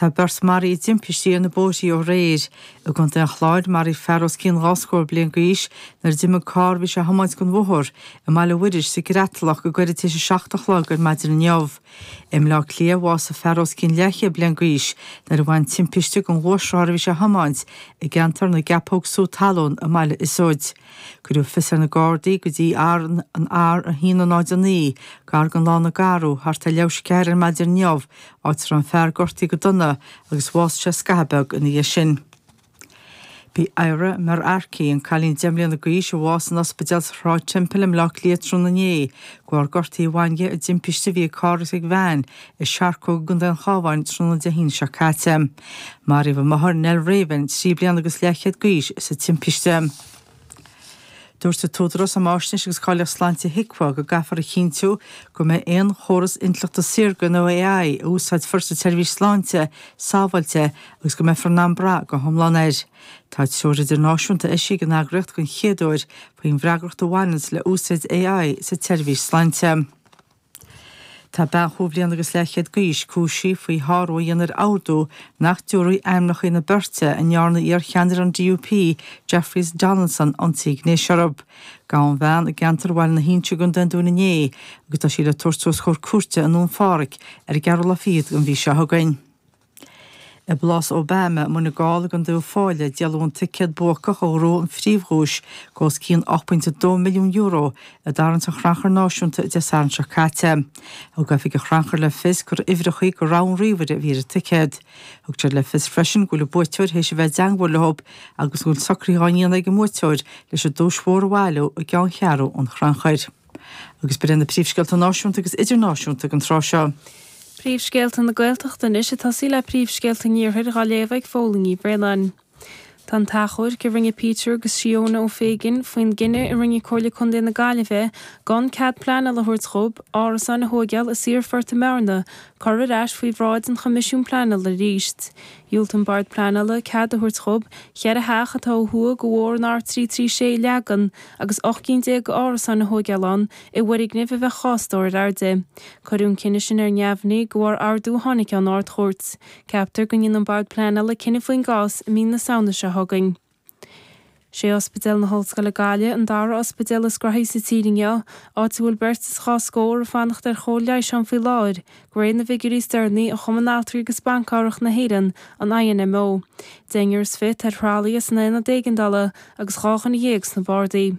Tá beirt maraithe i dtimpistí ar na bóithrí ó aréir. I gContae an Chláir, maraíodh fear os cionn dhá scór bliain d'aois nuair a d'imigh carr a bhí sé a thiomáint den bhóthar i mBaile Mhuiris sa gCreatalach go gairid tar éis a seacht a chlog ar maidin inniu. I mBleá Cliath, bhásaigh fear os cionn leathchéad bliain d'aois nuair a bhain timpiste den ghluaisrothar a bhí sé a thiomáint i gceantar na gCeapóg sú talún i mBaile Iosóid. Cuireadh fios ar na Gardaí go dtí an R109, gar den lána Garrow, thart ar leathuair tar éis a ceathair ar maidin inniu, áit a raibh an fear gortaí go dona agus bhásaigh sé scaitheamh beag ina dhiaidh sin. B'í Myra Markey, an cailín deich mbliana d'aois a bhásaigh in ospidéal Shráid Temple i mBleá Cliath tráthnóna inné, de bharr gortaí a bhain di i dtimpiste a bhí idir carr agus veain i Searcóg i gContae an Chábháin tráthnóna Dé hAoine seo caite. Maraíodh a máthair, Nell Ravin, trí bliana agus leathchéad d'aois, sa timpiste. Dúirt an tÚdarás um Fháisnéis agus Cáilíocht Sláinte, HIQA, go gcaithfear a chinntiú go mbeidh aon chóras intleachta saorga nó AI a úsáidfear sa tseirbhís sláinte sábháilte agus go mbeifear in ann brath go hiomlán air. Tá treoir náisiúnta eisithe ag an eagraíocht den chéad uair faoin bhfreagracht a bhaineanns le úsáid AI sa tseirbhís sláinte. Tá bean chúig bhliana agus leathchéad d'aois cúisithe faoi shárú a dhéanamh ar ordú nach dtabharfaí ainmneacha na beirte a ndearna iarcheannaire an DUP, Jeffrey Donaldson, ionsaí gnéis orthu. Gabhadh an bhean i gceantar Bhaile na hInse i gcontae an Dúin inné agus tá sí le tabhairt os comhair cúirte i nDún Pháraic ar an gceathrú lá fichead den mhí seo chugainn. I bPlás Obama, Muine Gall i gContae Uíbh Fhailí, díoladh an ticéad buacach a ghnóth an phríomhdhuais de os cionn €8.2 milliún i dtarraingt an Chrannchuir Náisiúnta Dé Sathairn seo caite. Thug Oifig an Chrannchuir le fios gur uimhreachaí de rogha an ríomhaire a bhí ar an ticéad. Thug siad le fios freisin go bhfuil an buaiteoir théis a bheith i dteangmháil leo agus go bhfuil socraithe á ndéanamh ag an mbuaiteoir leis an duais mhór a bhailiú i gceanncheathrú an Chrannchuir. Agus b'in iad na príomhscéalta náisiúnta agus idirnáisiúnta ag an tráth seo. Príomhscéalta na Gaeltachta anois ag tosaí le príomhscéalta an Iarthair á léamh ag Pádraicín Ní Bhraonáin. Tá an t-achomharc a rinne Peter agus Seóna Ó Féighin faoin gcinneadh a rinne Comhairle Contae na Gaillimhe gan cead pleanála a thabhairt dhób árasáin a thóigeáil i Saorphort i mBearna curtha ar ais faoi bhráid an Choimisiúin Pleanála arís. Dhiúlt an Bord Pleanála cead a thabhairt dhób cheithre theach atá ó thuaidh de bhóthar an R336 a leagan agus ocht gcinn déag de árasáin a thóigeáil ann i bhfoirgnimh a bheadh dhá stór ar airde. Cuireadh an cinneadh sin ar neamhní de bharr ordú a tháinig ón Ard-Chúirt. Ceaptar go ndéanann an Bord Pleanála cinneadh faoin gcás i mí na Samhna seo chugainn. Sé Ospidéal na hOllscoile Gaillimh an dara ospidéal is gnóthaí sa tír inniu, áit a bhfuil beirt is dhá scór ag fanacht ar chóir leighis ann faoi láthair, de réir na bhfigiúirí is deireanaí ó Chumann Altraí agus Ban Cabhrach na hÉireann, an INMO. Deichniúr is fiche ar thralaithe san aonad éigeandála agus dhá dhuine dhéag sna bardaí.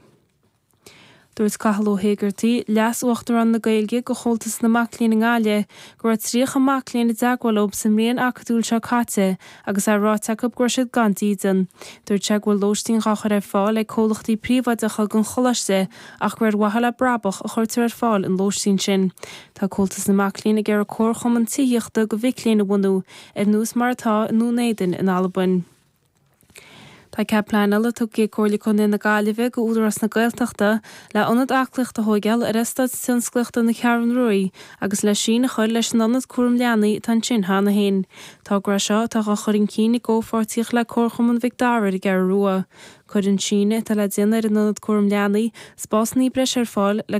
Dúirt Cathal Ó hÉigeartaigh, Leas-Uachtarán na Gaeilge do Chomhaltas na Mac Léinn i nGaillimh, go raibh 30 mac léinn i dteagmháil leo sa mbliain acadúil seo caite agus é ráite acu go raibh siad gan dídean. Dúirt sé go bhfuil lóistín dhá chur ar fáil ag comhlachtaí príobháideacha don choláiste ach gur ar mhaithe le brabach a chuirtear ar fáil an lóistín sin. Tá Comhaltas na Mac Léinn ag iarraidh comharchumann tithíochta do mhic léinn a bhunú, ar nós mar atá i nDún Éadain in Albain. Tá cead pleanála tugtha ag Comhairle Contae na Gaillimhe do Údarás na Gaeltachta le ionad aclaíochta a thóigeáil ar Eastát Tionsclaíochta na Ceathrún Ruaí agus le sín a chur leis an ionad cúram leanaí atá ansin cheana féin. Togra é seo atá á chur chun cinn i gcomhpháirtíocht le Comharchumann Mhic Dara ar an gCeathrú Rua. Cuirfidh an síneadh atá le déanamh ar an ionad cúram leanaí spás níos breise ar fáil le go